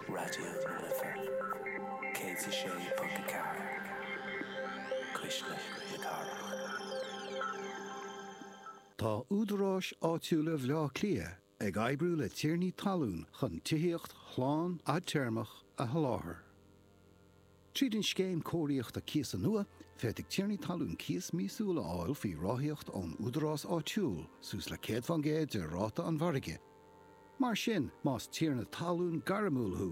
Raidió na Life 106.4, Cuisle na Cathrach. Tá údaráis áitiúla Bhaile Átha Cliath ag oibriú le tiarnaí talún chun tithíocht shlán fhadtéarmach a sholáthar. Tríd an scéim cóiríochta cíosa nua, féadfaidh tiarnaí talún cíos míosúil a fháil faoi ráthaíocht ón údarás áitiúil, suas le 100 faoin gcéad de ráta an mhargaidh. Mar sin, más tiarna talún gairmiúil thú,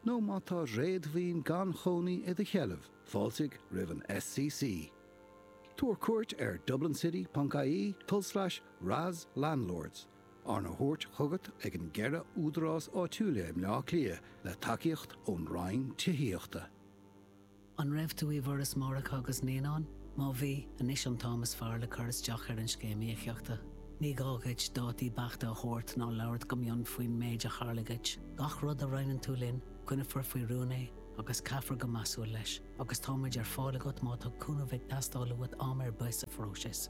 nó má tá réadmhaoin gan chónaí i do sheilbh, fáiltigh roimh an SCC. Tabhair cuairt ar dublincity.ie, tul slais, RAS Landlords. Arna thabhairt chugat ag na ceithre údarás áitiúil i mBleá Cliath le tacaíocht ón Roinn Tithíochta. An raibh tú i bhForas Máithreacha agus Naíonán? Má bhí, anois an t-am is fearr le cur isteach ar an Scéim Íocaíochta. Ní gá dhuit dátaí beachta a thabhairt ná labhairt go mion faoin méid a tharla dhuit. Gach rud a roinneann tú linn, coinneofar faoi rún é agus caithfear go measúil leis, agus táimid ar fáil agat má tá cúnamh ag teastáil uait am ar bith sa phróiseas.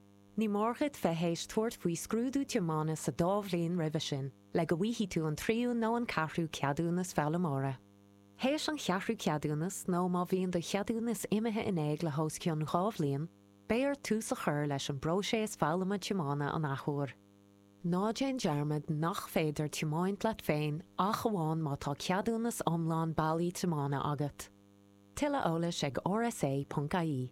Ní mór dhuit bheith théis tabhairt faoi scrúdú tiomána sa dá bhliain roimhe sin le go bhfaighidh tú an tríú nó an ceathrú ceadúnas foghlaimeora. Théis an cheathrú ceadúnas nó má bhíonn do cheadúnas imithe in éag le hos cionn dhá bhliain, beidh ort tús a chur leis an bpróiseas foghlama tiomána an athuair. Ná déan dearmad nach féidir tiomáint leat féin ach amháin má tá ceadúnas iomlán bailí tiomána agat. Tuilleadh eolais ag rsa.ie.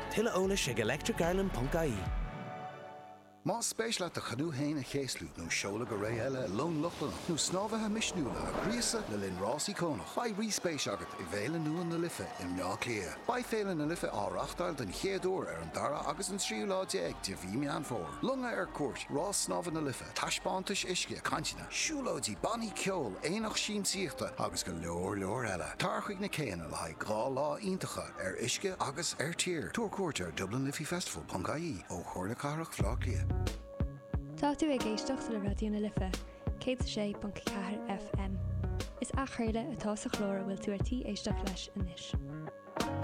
Tuilleadh eolais ag electricireland.ie. Más spéis leat do chanú féin a chéaslú nó seoladh go ré eile i long Lochlannach nó snámhaithe misniúla a ghríosadh le linn rás íocónach, beidh rí-spéis agat i bhFéile Nua na Life i mBleá Cliath. Beidh Féile na Life á reáchtáil den chéad uair ar an dara agus an tríú lá déag de mhí Meán Fómhair. Longa ar cuairt, Rás Snámha na Life. taispeántais uisce, cainteanna, siúlóidí, bannaí ceoil, aonach siamsaíochta agus go leor leor eile. Tar chuig na céanna le haghaidh dhá lá iontacha ar uisce agus ar tír. Tabhair cuairt ar dublinliffeyfestival.ie ó Chomhairle Cathrach Bhleá Cliath. Tá tú ag éisteacht le Raidió na Life, 106.4 FM. Is athchraoladh atá sa chlár a bhfuil tú ar tí éisteacht leis anois.